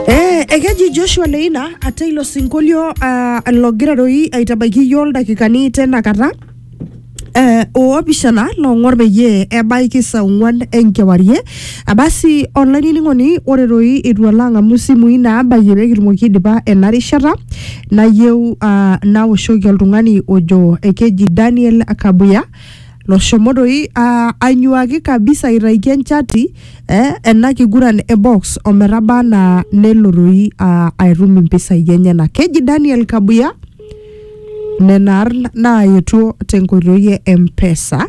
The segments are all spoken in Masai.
Eh, ekeji Joshua Leina ate ilo sinkolio ah, logira doi aitabaiki iyioo ildakikani tena kata eh, oopishana loong'or peyie ebaiki saa ong'uan enkewarie abasi olainining'oni ore doi eitu alo ang'amu isimui naabayie pee kitumoki aidipa ena rishata nayieu ah, naoshoki oltung'ani ojo ekeji Daniel Kabuya loshomo doi uh, anyuaki kabisa aitaiki enchati eh, ena kiguran e box ometaba anaa nelo doi uh, atum impisai enyenak keji daniel kabuya nena arn naayetuo tenkoitoi e empesa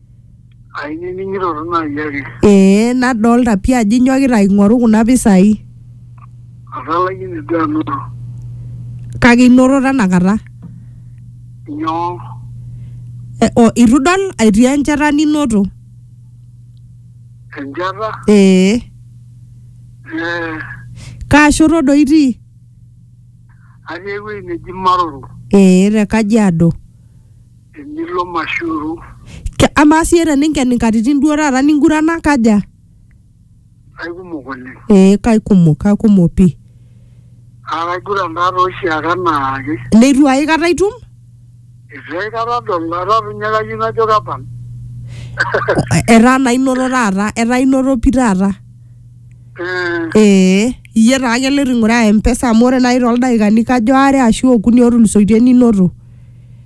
Ainining'ito tu naaji ake. Ee nadolta pii ajo inyokita aing'oru kuna pisai Atalaikine duo anoto. kake inoto tenakata. Nyoo? E, o, itu idol etii enchata ninoto? Enchata? Ee. Eh, Kaa shoto doi itii? atii ewueji neji Maroro. Ee te Kajiado. Enilo Mashuru. Ke, amaa siyie teninken inkatitin duo taata ningurana kaja? Aikumok oleng. Ee kaikumok, kaikumok pii. Naa kaiguran taa too oshiake anaake. Neitu aikata itum? Eitu aikata adol, etaa doi ninye kayieu najo kepal. Etaa naa inoto taata, etaa inoto pii taata. Eh, Ee, iyie taa ake loito aing'uraa mpesa amu ore naaji toldaikani kajo aare ashu okuni otulusoitie ninoto.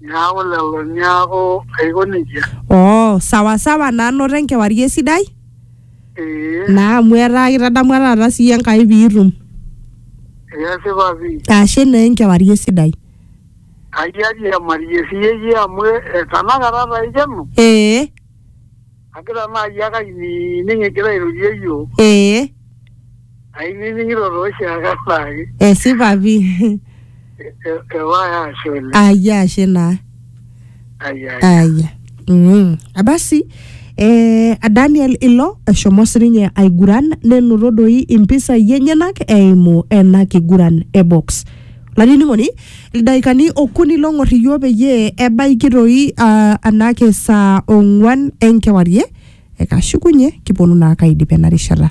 Neaku lelo neaku aiko nejia. oo sawa sawa naa noto enkewarie sidai Ee, naa amu etaa kitadamua taata sii enkai piitum kesipa pii. ashe naa enkewarie sidai Kayiari emarie siyie iyie amu eh, tanakata taa ikeno. ee Agira naaji ake ainining egira airorie iyiok. ee Ainining'ito taa oshiake anaake. esipa pi E- e- Ewae ashe oleng. ayia ashe naa Ai, ai. aya mm. abasi eh, daniel ilo eshomo sininye aiguran nenoto doi impisai enyenak eimu ena kiguran e box Lanining'oni, ildaikani okuni long'or iyio peyie ebaiki toi ah, anake saa ong'uan enkewarie, ekashukunye kiponu naa kaidip ena rishata.